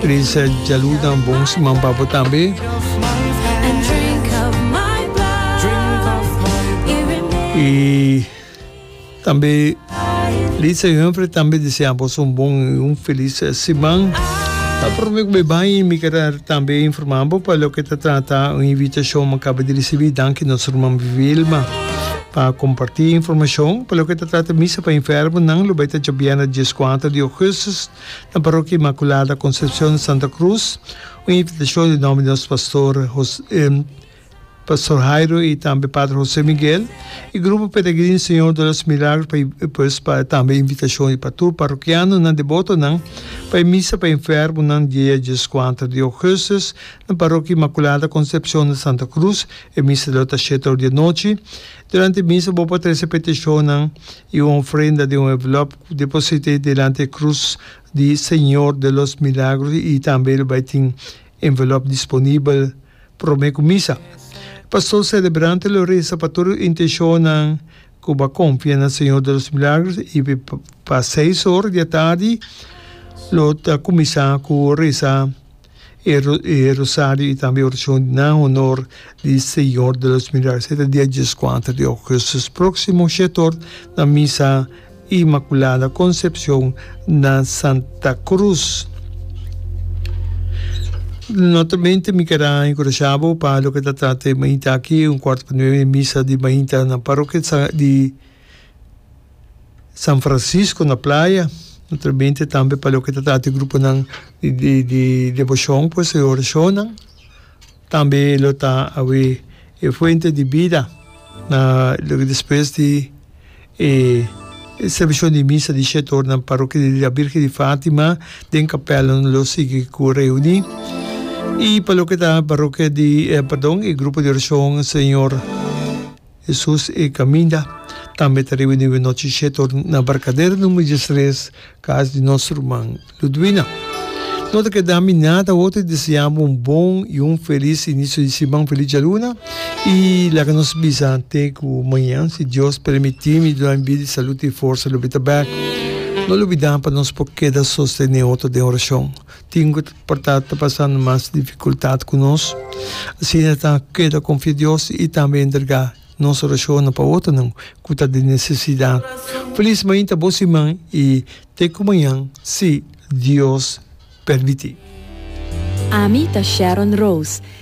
Teresa Jaluda un bon siman pa bo tambe. Y tambe Lisa y Humphrey tambe desea bos un bon y un feliz siman. Ta prome ku be bai mi kera tambe informa bo pa loke ta trata un invitacion mi kaba di risibi. Danki nos ruman Vilma pa komparti informacion. Pa loke ta trata misa pa enfermonan lo bai ta djabiera dies kuater di augustus. Na Parokia Inmaculada Concepcion di Santa Cruz, un invitacion di nomber di nos Pastor Jose, Pastor Jairo y tambe Pater Jose Miguel y Grupo Peregrin Señor de los Milagros pa y pues pa tambe invitacion di pa tur Parokianonan debotonan pa e Misa pa enfermonan dia diescuater di Augustus na Parokia Inmaculada Concepcion di Santa Cruz. E Misa lo ta sheta ora dianochi. Durante e Misa bo por trece peticionnan i un ofrenda den un envelop ku deposit'é delanti e krus di Señor de los Milagros i tambe lo bai tin envelop disponibel promé ku misa. E pastor selebrante lo resa pa tur e intenshonnan ku bo a konfia na Señor de los Milagros i pa seis or di atardi lo ta kuminsá ku resa. e rosario y tambe oracion na honor di Señor de los Milagros. E ta dia dieskuater di augustus proximo shetor na Misa Inmaculada Concepcion na Santa Cruz. Notamente mi ker a encouraja bo pa loke ta trata di mainta aki un cuarto pa nueve misa di mainta na parrokia di San Francisco na playa, no ta binte tambe pa loke ta trata di gruponan di di di debocion pues e oracionnan, tambe lo ta awe e Fuente di Bida na loke despues di e servicion di misa di shete ora na Parokia di La Birgen di Fatima den capelnan lo sigui cu reuni y pa loke ta parokia di pardon e grupo di oracion Señor Hesus e kaminda tambe ta riba niu e nochi shetor na barkader number diestres, kas di nos ruman Ludwina. No ta keda mi nada otro di deseá bo un bon i un felis inisio di siman, felis dialuna, i laga nos bisa te ku mañan, si Dios permití, mi duna mi bida di salud i forsa lobi ta bèk. No lubidá pa nos por keda sostené otro den orashon. Tin cu por ta ta pasando mas dificultad cu nos. Asina ta keda confia Dios y tambe entrega nos oracionnan pa otronan cu ta di necesidad. Feliz mainta bo siman y te cu mañan si Dios permiti. Ami ta Sharon Rose.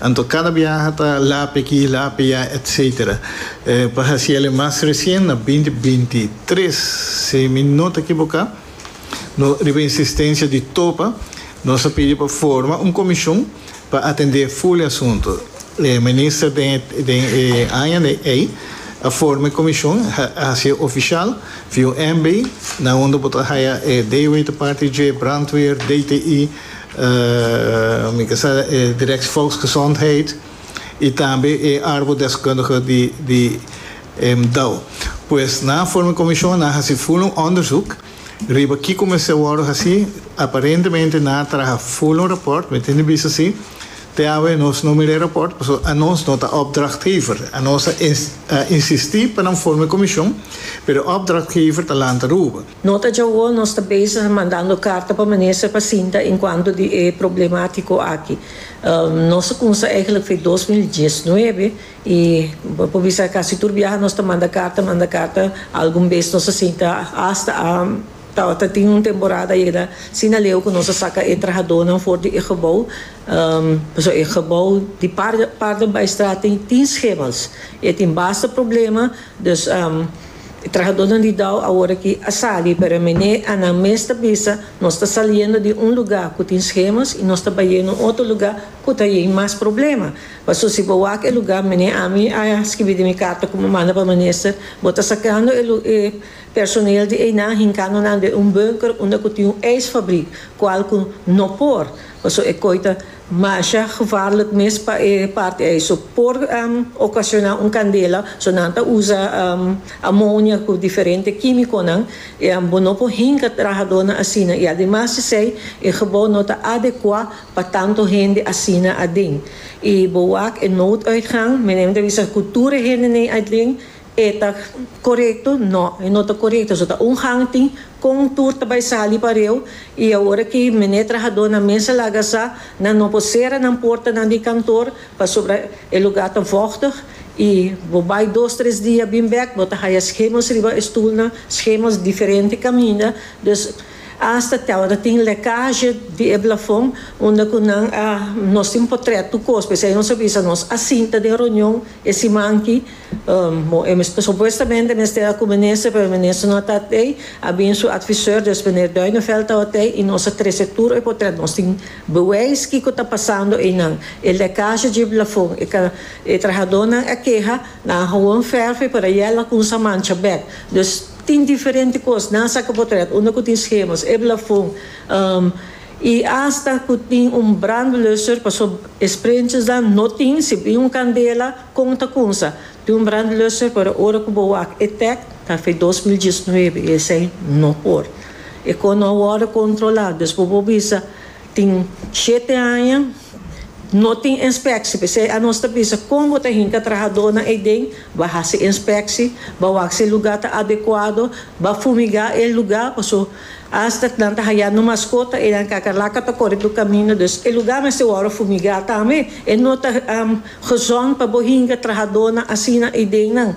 Anto cada biaha ta lape aki, lape ya etc. Pa haci el e mas recien na binti binti tres, si mi no ta ekiboca, no riba insistencia di Topa, nos a pidi pa forma un comision pa atende full e asunto. E Minister den den e aña ey a forma e comision, a haci e oficial, VUMB, na unda bo ta haya e Dewey ta parti dje, Brandweer, DTI, Mi ta sa e Direct Volksgezondheid y tambe e Arbodeskundige di Emdau. Pues nan a forma e comision, nan a haci full un onderzoek riba kico mester wordo haci. Aparentemente nan a traha full un rapport, mi tin di bisa si. Te awe nos no mira e rapport pasobra anos no ta opdrachtgever. Anos a insisti pa nan forma e comision, pero e opdrachtgever ta lanta ruba. Nota djawo nos ta bezig mandando karta pa minister pa sinta enkuanto di e problematiko aki. Nos a kumsa eigelijk for dos mil diesnuebe i bo por bisa kasi tur biaha nos ta manda karta manda karta algun bes nos a sinta hasta a tabata tin un temporada ayera sin aleu ku nos a saka e trahadónan for di e gebou pasobra e gebou di parten pa e straat tin tin schemels i tin basta problema dus. E trahadónan di Dow aworakí a sali, pero mené Annan mes ta bisa, Nos ta saliendo di un lugá ku tin schemas i nos ta bayendo un otro lugá ku ta yei mas problema. Paso si bo wak e lugá, mené ami a skibi den mi karta ku mi manda pa minister, bo ta sakando e e personeel di einan hinkando nan den un bunker unda ku tin un ijsfabrik, kual ku no por, paso e koi ta Masha gevaarlijk mes pa e parti ei so por ocaciona un candela, so nan ta usa amonia cu diferente quimiconan y bo no por hinca trahadornan asina y ademas d'esey e gebouw no ta adecua pa tanto hende asina aden y bo wak e nooduitgang, meneer mi ta bisa cu tur e hende nei aden E ta korekto? No, e no ta korekto. Su ta un hangtin kon tur ta bai sali pa reu i awor ki mene trahadónan mes a laga sa, nan no por sera nan portanan di kantor pasobra e lugá ta vòchtig i bo bai dos tres dia bin bèk bo ta haya schemos riba e stulnan, schemos diferente kaminda. Dus asta te awor ta tin lèkazhe di e blafon unda ku nan a nos tin potrèt tur kos p'esei nos a bisa nos a sinta den ronion e siman ki. Bo e mester supuestamente mester a cu minister pero minister no a ta tei a bin su advisor dus meneer Duinevelt tawat tei y nos a trece tur e potrèt nos tin bewijs kico ta pasando eynan e lecaje dje blafon e ca e trahadornan a keha nan a hawon verf e por ayer lacunsa a mancha bek dus tin diferente cos nan a saca potrèt unda cu tin schemas e blafon y hasta cu tin un brandblusser pasobra e sprintsers dan no tin si bin un candela Kon ta kunsa di un brandlusser pero ora ku bo wak e tèk, ta fe dos mil diesnuebe, esei no por. E kos no a wòrdu kontrolá, dus bo por bisa tin shete aña no tin enspekshi, p'esei anos ta bisa kon bo ta hinka trahadónan eiden, ba hasi enspekshi, ba wak si e lugá ta adekuado, ba fumigá e lugá, paso Hasta cu nan ta haya no mascota, eran kakalaka ta kore bo camino, dus e lugar mester wòrdu fumigá tambe. E no ta gezond pa bo hinga trahadónan asina i dennan.